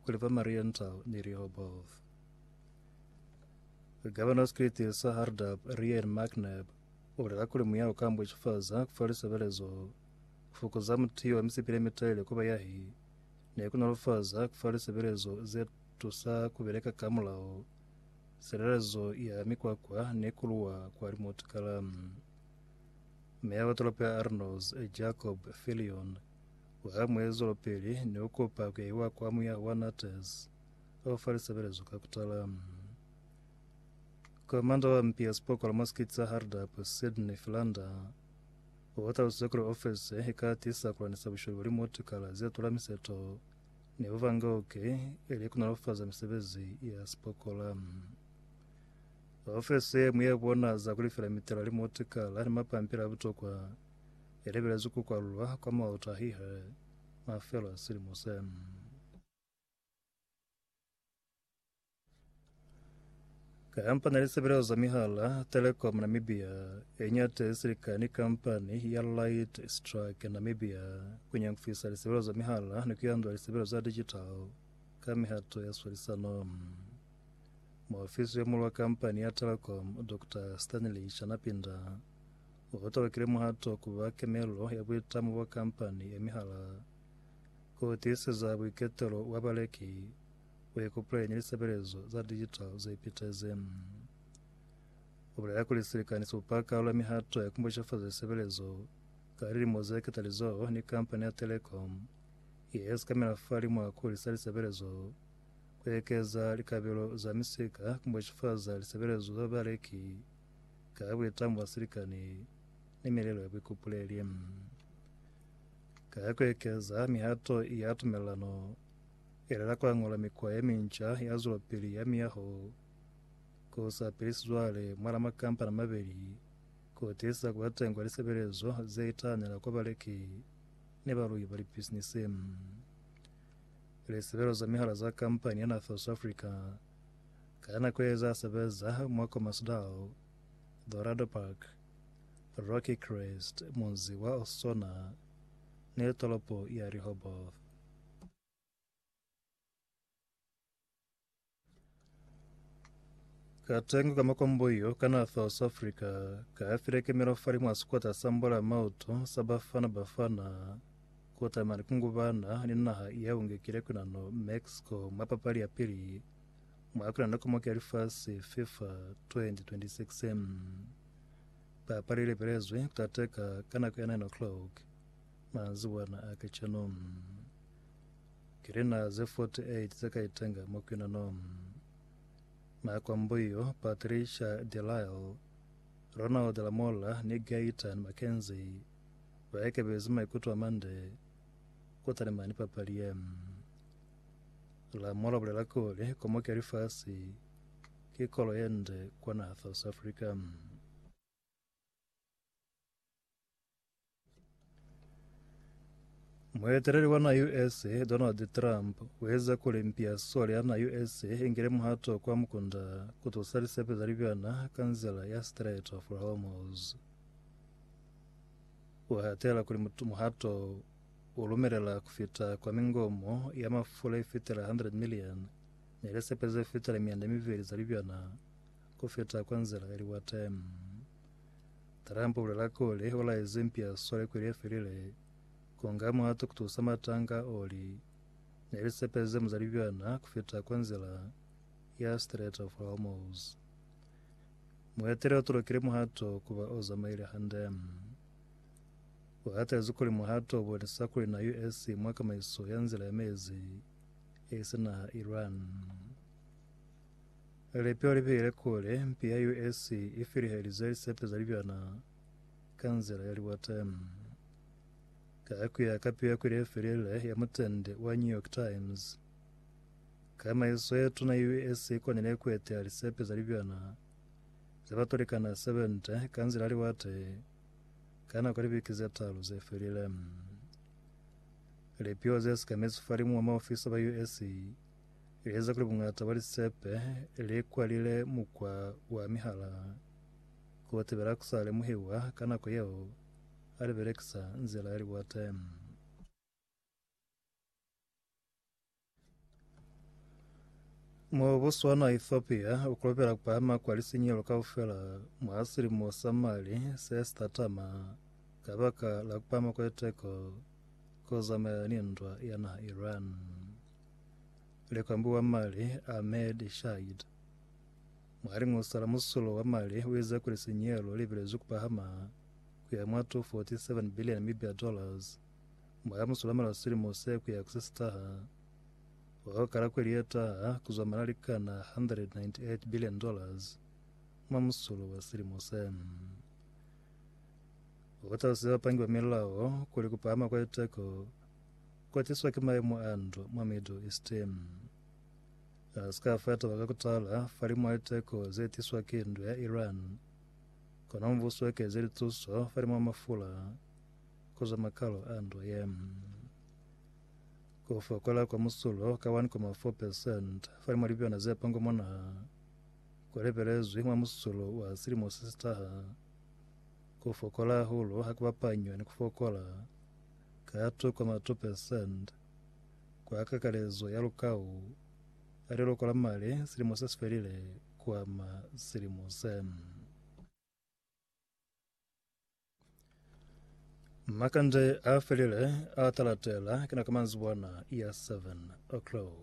Kuli ba Marienthal ni Rehoboth. Governor Secretary sa Hardap, Rian McNabb, ulela kuli muya uka ambwechifaza kufa lisebelezo, kufukuza mutiyo wa misipi lemitele ku bayahi, ni kunolofaza kufa lisebelezo ze tusa kubeleka ka mulao, silelezo ya mikwakwa ni kuluwa kwa limotikala. Meya wa tolopo ya Arnos, Jacob Fillion, Ka muezulupili ni u kupa ku iwa kwa muya wa Natas o fa lisebelezo ka kutala. Komanda wa mpi ya sipokolo mwa sikiti sa Hardap, Sydney Philander, o talusize kuli ofese i ka tisa ku lanisa busholi bwa limotikala ze tula miseto ni bubangauki ili ku nolofaza misebezi ya sipokola. Ofese ye mu ye bona za ku lifela mitela, limotikala ni mapampili a butokwa i lebelezwi ku kwalulwa kwa mautahihi mafelo a silimo se. Kampani ya lisebelezo za mihala Telecom Namibia i ñate silika ni kampani ya Light Strike Namibia ku nyangufisa lisebelezo za mihala ni ku yandula lisebelezo za digital ka mihato ya swalisano. Muofisi yo mulu wa kampani ya Telecom, Dr. Stanley Shanapinda, Mu potolokile muhato ku ba kemelelo ya buitamo bwa kampani ye mihala ku tiiseza buiketelo bwa baleki ku ikupuleña lisebelezo za digital ze pitezi. U bulela kuli silikani si bupa kaalo ya mihato ya ku bushafaza lisebelezo ka lilimo ze ketalizoho ni kampani ya telecom ye sikamela fa limwa ku hulisa lisebelezo, ku ekeza likabelo za misika, ku bushafaza lisebelezo za baleki, Ka ya kuitambo ya silikani ni milelo ya buikupuleli. Ka ya kuekeza mihato ya tumelelano, elela kuañola mikwa ye minca ya zwelopili ya miyaho ku sa pelisi cwale mwal'a makampani a mabeli ku tiiseza kuba teñi kwa lisebelezo ze itahanela kwa baleki ni baluhi ba lipisinisi. Lisebelezo za mihala za kampani ya Nathos Africa Ka nako ye za sebeza mwa Commercedale, Dorado Park, Rocky Crest, munzi wa Osona, ni tolopo ya Rehoboth. Katengo ka makombo yo ka na South Africa ka file kemelo falimwa sikota sa mbola mauto sa Bafana Bafana. kutama ni kungubana ni naha ya bungekile kuna no Mexico mwa papali ya pili mwa kuna nokomoke ya lifasi FIFA 2026. Papali ilebelezwe kutateka ka nako ya 9 o'clock manzibwana a kacenu. Kilina ze 48 ze ka itenga mwa kuna no makwambo iyo Patricia Delisle, Ronald Lamola ni Gaetan McKenzie Ba ikebezi maikuto a mande ku talimani papali ye. Lamolo a bulela kuli, Komoki ya Lifasi ki kolo ye nde kwa naha South Africa. Mueteleli wa naha USA, Donald Trump, u eza kuli mpi ya sole ya naha USA i ngile muhato kwa mukunda ku tusa lisepe za libyana ka nzila ya Strait of Hormuz. Ku hatela kuli muhato u lumelela ku fita kwa mingomo ya mafula i fitela 100 milioni ni lisepe ze fitela mianda miveli za libyana ku fita kwa nzila ya liwate. Trump u bulela kuli u laezi mpia swale kweli ye felile ku nga muhato ku tusa matanga a oli ni lisepe ze mu za libyana ku fita kwa nzila ya Strait of Hormuz. Muhateli o tolokile muhato kuba o zamaile hande. U hatelezi kuli muhato o bonisa kuli na US i mwa kamaiso ya nzila ya mezi e si naha Iran. Lipi o libile kuli mpi ya US i filihelize lisepe za libyana ka nzila ya liwate. Ka kuya ka piyo ya kwili ye felile ya mutende wa New York Times, Tsamaiso ye tuna ye US i konile ku eteya lisepe za libyana ze ba tolikana 70 ka nzila ya liwate ka nako ya libiki ze talu ze felile. Lipiho ze sekamezi falimu wa maofisa ba US li eza kuli buñata bwa lisepe li kwalile mukwa wa mihala ku tibela ku sa lemuhiwa ka nako yeo ha li belekisa nzila ya liwate. Mo Botswana, Ethiopia u kolopela kupahama kwa lisinyelo kaufela mwa silimo sa mali se sitatama ka baka la kupahama kwa liteko ku zamaya ni ndwa ya naha Iran. Likwambi wa mali Ahmed Shahid mwa lingusa la musulo wa mali u ize kuli sinyelo li bilezwi kupahama ku ya mwa 247 bilioni mibya dollars Mwa ka musulamalo silimo se ku ya ku se sitaha, wa ka kala kweli ye taha ku zwa mali a likana 198 billion dollars mwa musulo wa silimo se. Ku kotazisa bapangi ba milao kuli ku pahama kwa liteko ku tiswa ki maemo a ndwa mwa Middle East. Ha si ka fa taba ka ku tala fahalimu a liteko ze tiswa ki ndwa ya Iran, kono mubuso u ekeze lituso fahalimu a mafula Ku zwa makalo a nto ye, ku fokola kwa musulo ka 1,4 percent fa mwa libyona ze pongo mwa naha ku lebelezwi mwa musulo wa silimo se si taha. Ku fokola hahulu ha ku bapanywa ni ku fokola ka 2,2 percent kwa kakalezo ya lukau a liloko la mali silimo se si felile ku ama silimo se. Makande a felile a talatela kina ka manzibwana ya 7 o'clock.